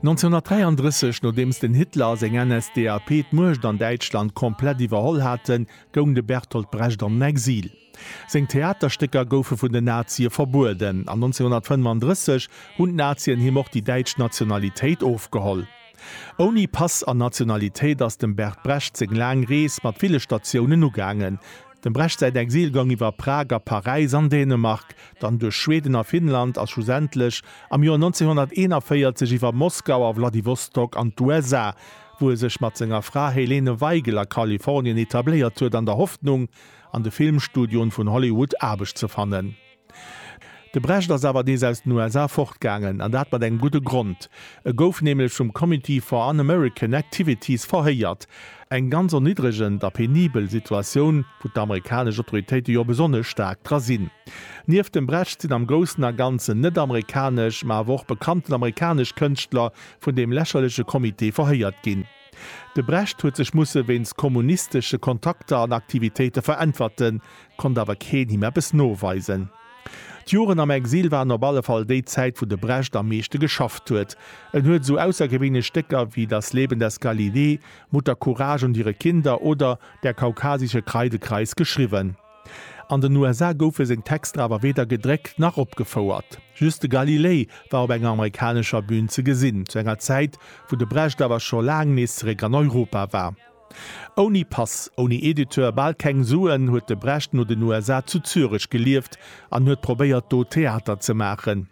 1933, nodeems den Hitler a seng NSDAP d'Muecht an Däitschland komplett iwwerholl haten, goung de Bertolt Brecht an den Exil. Seng Theaterstécker goufe vun den Nazie verbueden, an 1935 hunn d'Nazien him och déi däitsch Nationalitéit ofgeholl. Ouni Pass an Nationalitéit ass dem Bert Brecht seng laang Rees mat ville Statiounen ugaangen. Dem Brecht säin Exil goung iwwer Prag a Paräis an Dänemark, dann duerch Schweden a Finnland a schlussendlech am Joer 1941 iwwer Moskau a Wladiwostok an d'USA, wou e sech mat senger Fra Helene Weigel a Kalifornien etabléiert huet an der Hoffnung, an de Filmstudioen vun Hollywood Aarbecht ze fannen. De Brecht ass awer nees aus den USA fortgaangen, an dat mat engem gudde Grond. E gouf nämlech vum Committee for Un-American Activities verhéiert, eng ganz erniddregend a penibel Situatioun, wou d'amerikanesch Autoritéite jo besonnesch staark dra sinn. Nieft dem Brecht sinn am Groussen a Ganzen net-amerikanesch, ma awer och bekannten amerikanesch Kënschtler vun deem lächerleche Comité verhéiert ginn. De Brecht huet sech musse wéinst kommunistesche Kontakter an Aktivitéite veräntwerten, konnt awer keen him eppes noweisen. D'Joren am Exil waren op alle Fall déi Zäit, wou de Brecht am meeschte geschafft huet. En huet esou aussergewéinlech Stécker wéi Das Leben des Galilei, Mutter Courage und ihre Kinder oder Der kaukasische Kreidekreis geschriwwen. An den USA goufe seng Texter awer weder gedréckt nach opgefouert. Just de Galilei war op enger amerikanescher Bün ze gesinn, zu enger Zäit, wou de Brecht awer scho laang nees zeréck an Europa war. Ouni Pass, ouni Editeur, bal keng Suen, huet de Brecht no den USA zu Zürech gelieft an huet probéiert, do Theater ze maachen.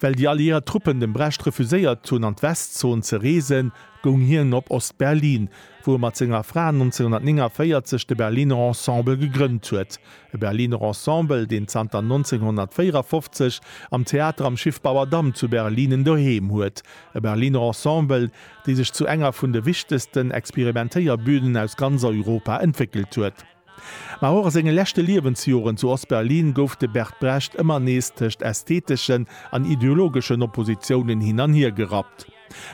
Well déi alliéiert Truppen dem Brecht refuséiert hunn an d'Westzon ze reesen, goung hien op Ost-Berlin, wou e mat senger Fra 1949 de Berliner Ensemble gegrënnt huet. E Berliner Ensemble, deen zanter 1954 am Theater am Schiffbauerdamm zu Berlin en Doheem huet. E Berliner Ensemble, dee sech zu enger vun de wichtegsten Experimentéierbünen aus ganz Europa entwéckelt huet. Ma och a senge leschte Liewensjoren zu Ost-Berlin gouf de Bert Brecht ëmmer nees tëscht ästheteschen an ideologeschen Oppositiounen hin an hier gerappt.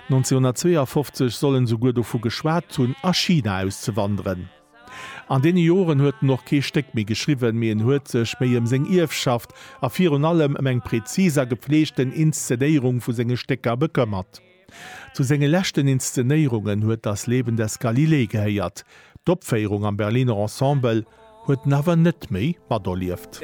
1952 soll en souguer dovu geschwat hunn, a China auszewanderen. An deene Joren huet en och kee Stéck méi geschriwwen, mee en huet sech méi ëm seng Ierfschaft a virun allem ëm eng präzis a gepfleegten Inszenéierung vu senge Stécker bekëmmert. Zu senge leschten Inszenéierungen huet Das Leben des Galilei gehéiert. D'Opféierung am Berliner Ensemble huet en awer net méi materlieft.